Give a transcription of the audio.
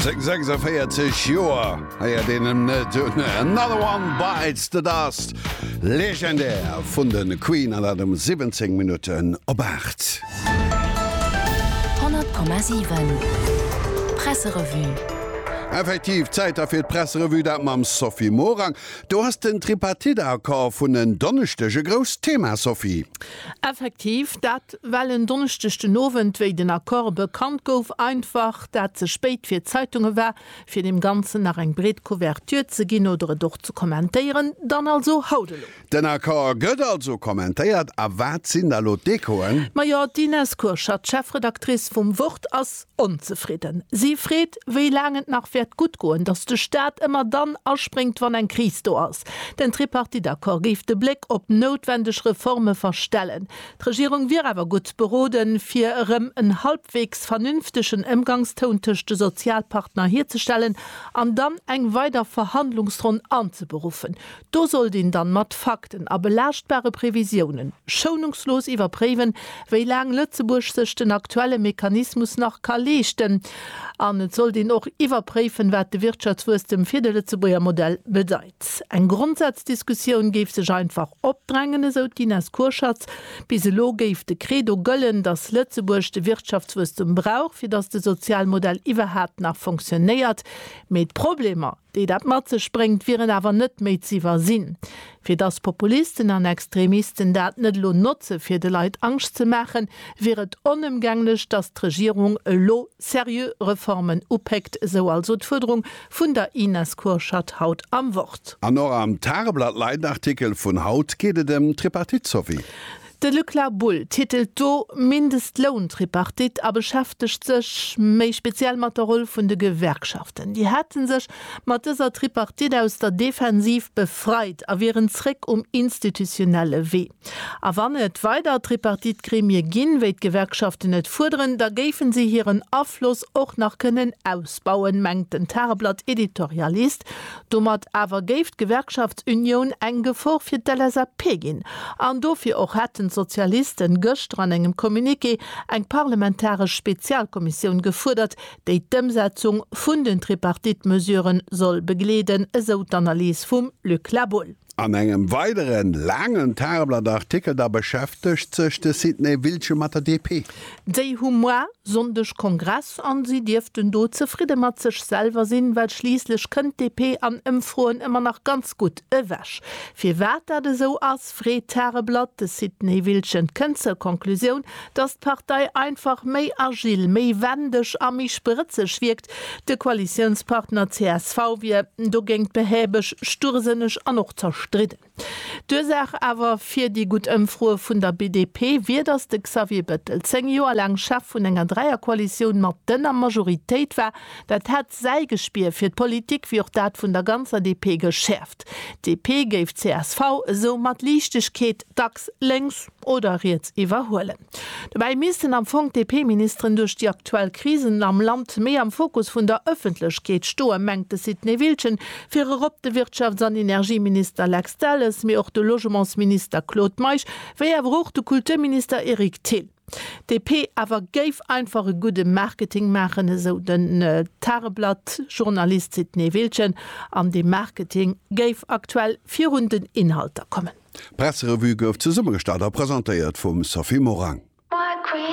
Seng 46 Joer héiert een em net un. Another One Bites the Dust, legendär vun de Queen, an dat um 17 Minutten op 8. 100,7 Presserevue. Effektiv, Zäit da fir d'Presserevue, dat mam Sophie Morang. Do ass den Tripartite-Accord vun en Donneschdeg e grousst Thema, Sophie. Effektiv, dat well en Donneschdeg den Owend, wéi den Accord bekannt gouf, einfach dat ze spéit fir d'Zeitunge war, fir deem Ganzen nach eng breet Couverture ze ginn oder et och ze kommentéieren. Dann also haut elo. Den Accord gëtt also kommentéiert. A wat sinn da elo d'Echoen? Majo, d'Ines Kurschat, Chefredactrice vum Wort, ass. Onzefridden si freet, wéi laang et nach wäert gutt goen, datt de Staat ëmmer dann aspréngt, wann eng Kris do ass. Den Tripartite-Accord géif de Bléck op noutwendeg Reforme verstellen. D'Regierung wier awer gutt beroden, fir erëm en halbwegs vernünftegen Ëmgangstoun tëscht de Sozialpartner hierzestellen an dann eng weider Verhandlungsronn anzeberuffen. Do sollt een dann mat Fakten a belaaschtbare Previsiounen schounungslos iwwerpréiwen, wéi laang Lëtzebuerg sech den aktuelle Mechanismus nach ka leeschten. An et sollt een och iwwerpréiwen, wat de Wirtschaftswuesstem fir de Lëtzebuerger Modell bedeit. Eng Grondsaz-Diskussioun géif sech einfach opdrängen, esou d'Ines Kurschatz. Bis elo géif de Credo gëllen, datt Lëtzebuerg de Wirtschaftswuesstum brauch, fir datt de Sozialmodell iwwerhaapt nach fonctionnéiert. Mee d'Problemer déi dat mat sech bréngt, wieren awer net méi z'iwwersinn. Fir dass Populisten an Extremisten dat net elo notze fir de Leit Angscht ze maachen, wier et onëmgänglech, dass d'Regierung elo seriö Reformen upéckt, sou also d'Fuerderung vun der Ines Kurschat haut am Wort. An och am Tageblatt Leitartikel vun haut geet et ëm d'Tripartite, Sophie. De Luc Labull titelt do Mindestlountripartite a beschäftegt sech méi speziell mat der Roll vun de Gewerkschaften. Déi hätte sech mat dëser Tripartite aus der Defensiv befreit a wieren zréck um institutionelle Wee. A wann et weider Tripartite-Gremie ginn, wéi d'Gewerkschaften et fuerderen, da géife si hiren Afloss och nach kënnen ausbauen, mengt den Tageblatt-Editorialist Domat awer géif d'Gewerkschaftsunioun eng Gefor fir d'LSAP ginn. An dofir och hätten d'Sozialiste gëschter an engem Communiqué eng parlamentaresch Spezialkommissioun gefuerdert, déi d'Ëmsetzung vun den Tripartite-Mesuren soll begleeden, esou d'Analys vum Luc La Boëlle. An engem weidere laangen Tageblatt-Artikel da beschäftegt sech de Sidney Wiltgen mat der DP. Déi hu moar Sonndeg Kongress an si dierften do zefridde mat sech selwer sinn, well schliisslech kënnt d'DP an Ëmfroen ëmmer nach ganz gutt ewech. Firwat dat esou ass, freet d'Tageblatt de Sidney Wiltgen. Kënnt zur Conclusioun, datt d'Partei einfach méi agil, méi wendeg a méi sprëtzeg wierkt, De Koalitiounspartner csv wier dogéint behäbeg, sturrsënneg an och zerstridden. D'Ursaach awer fir déi gutt Ëmfroe vun der BDP wier, datt de Xavier Bettel zéng Joer laang Chef vun enger Dräierkoalitioun mat dënner Majoritéit war. Dat hätt säi Gespier fir d'Politik wéi och dat vun der ganzer DP geschäerft. D'DP géif csv esou mat Liichtegkeet dacks lénks oder riets iwwerhuelen. Dobäi missten am Fong d'DP-Ministeren duerch déi aktuell Krisen am Land méi am Fokus vun der Ëffentlechkeet stoen, mengt de Sidney Wiltgen. Vir erop de Wirtschafts an Energieminister Lex Delles, mee och de Logementsminister Claude Meisch, wéi awer och de Kulturminister Eric Thill. D'DP awer géif einfach e gudde Marketing maachen, esou den Tageblatt-Journalist Sidney Wiltgen, an dee Marketing géif aktuell virun den Inhalter kommen. D'Presserevue gouf zesummegestallt a presentéiert vum Sophie Morang.